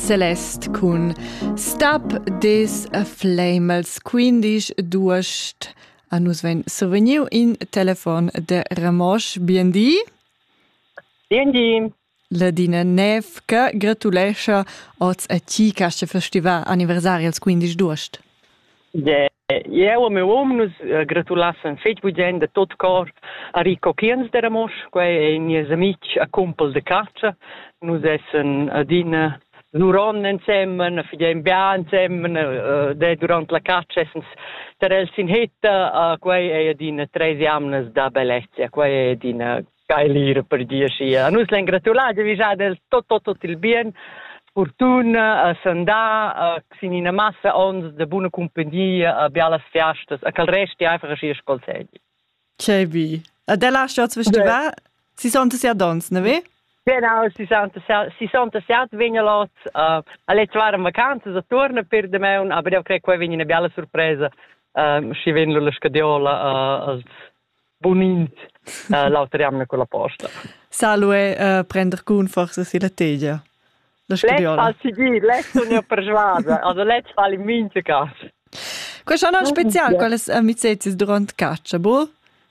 Celeste cun Stop This Flamels, quindisch d'uost. A nus vegn survegniu in telefon de Ramosch. Biendi. Biendi. Ladina Nev che gratulescha oz a ti che festivar anniversari als 15 d'uost. Eu e miu um nus gratulassan fetg bugien da tot cor a Rico Kiens de Ramosch, quei ei nies amitg a cumpel de catscha. Nus essen adina zuron ensemen, fidem bia ensemen, uh, de durant la caccia essens ter els in hetta, uh, quei ei adina tres jamnas da bellezia, quei ei adina Skylir per dir sia. Nus l'en gratulat de vijar del tot tot tot il bien fortuna a sandà a sin ina massa ons de buna compagnia a bialas fiastas a cal resti einfach aschi scol segi. Che bi. A della stad festival si son sia dons, ne ve? Genau, si son si son siat vegna lot uh, a le tvar vacanzas a torna per de meun, aber eu cre qua vegna una biala sorpresa uh, schi ven la scadiola uh, Bunint uh, l'auter jamna con la posta. Salue uh, prender cun forza si la tegia. Let's fa seguir, let's unir per svaza, also let's fare in minze caso. Questo è un speciale con le amicizie durante caccia, boh?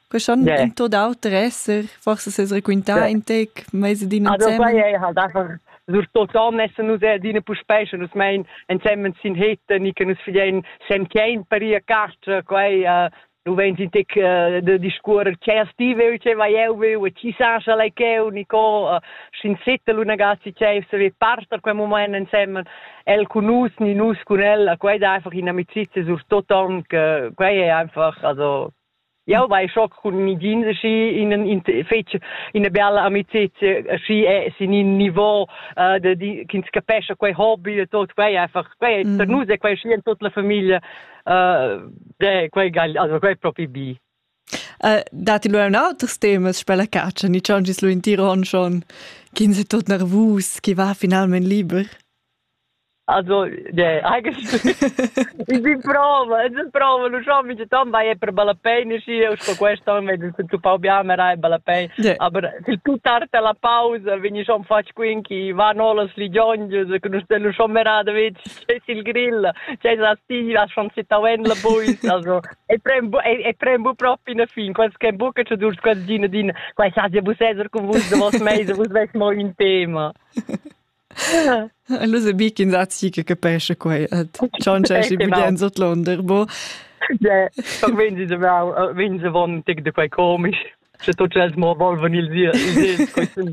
Questo yeah. in tot auter esser, forse se raccontare yeah. in te mese di insieme. Also quai è halt einfach sur tot an essen nus er dine puspesche nus mein ensemmen sin heten ich nus filein sem kein per ihr caccia quai uh, du vens in tec uh, de discuorer che as ti veu che vai eu veu e chi sa scha lei cheu Nico uh, schin sette l'unagazzi che se ve parter quel moment insemmen el con nus ni nus con ella quei da einfach in amicizia sur toton che quei è einfach also Ja, weil schock kun mi jeans schi in in fetg in a bella amicizia schi è sin in niveau uh, de di kins capesce quei hobby e tot quei einfach quei mm. per nus è quei schi in tot la famiglia Eh, quei, also quei propi bi. Uh, datti lu ein auters temas per la catscha, ni schon gis lu in Tiron schon, ch'ins è tot nervus, chi va finalment liber? Also, nee, eigentlich in bin prova, in bin prova, lu schon mi tan vai per balapein și eu sto questo mi de tu pa bia me rai balapein. Aber sil più tarda la pausa, veni schon fac quin chi va nolas li giongius, che nu stelu schon me rada vit. c'è il grill, c'è la stiva, schon si tauen la bois, also e prem e prem bu proprio in fin, quels che buca ci dur quels din din, quai sa je bu sezer con vus de vos mese, vus ves mo in tema. Allora bic in sazi che capesce quai, ciao c'è si bien sot l'onder, bo. Ja, wenn sie wenn sie von tic de quai komisch. C'è tot els mo volven ils ils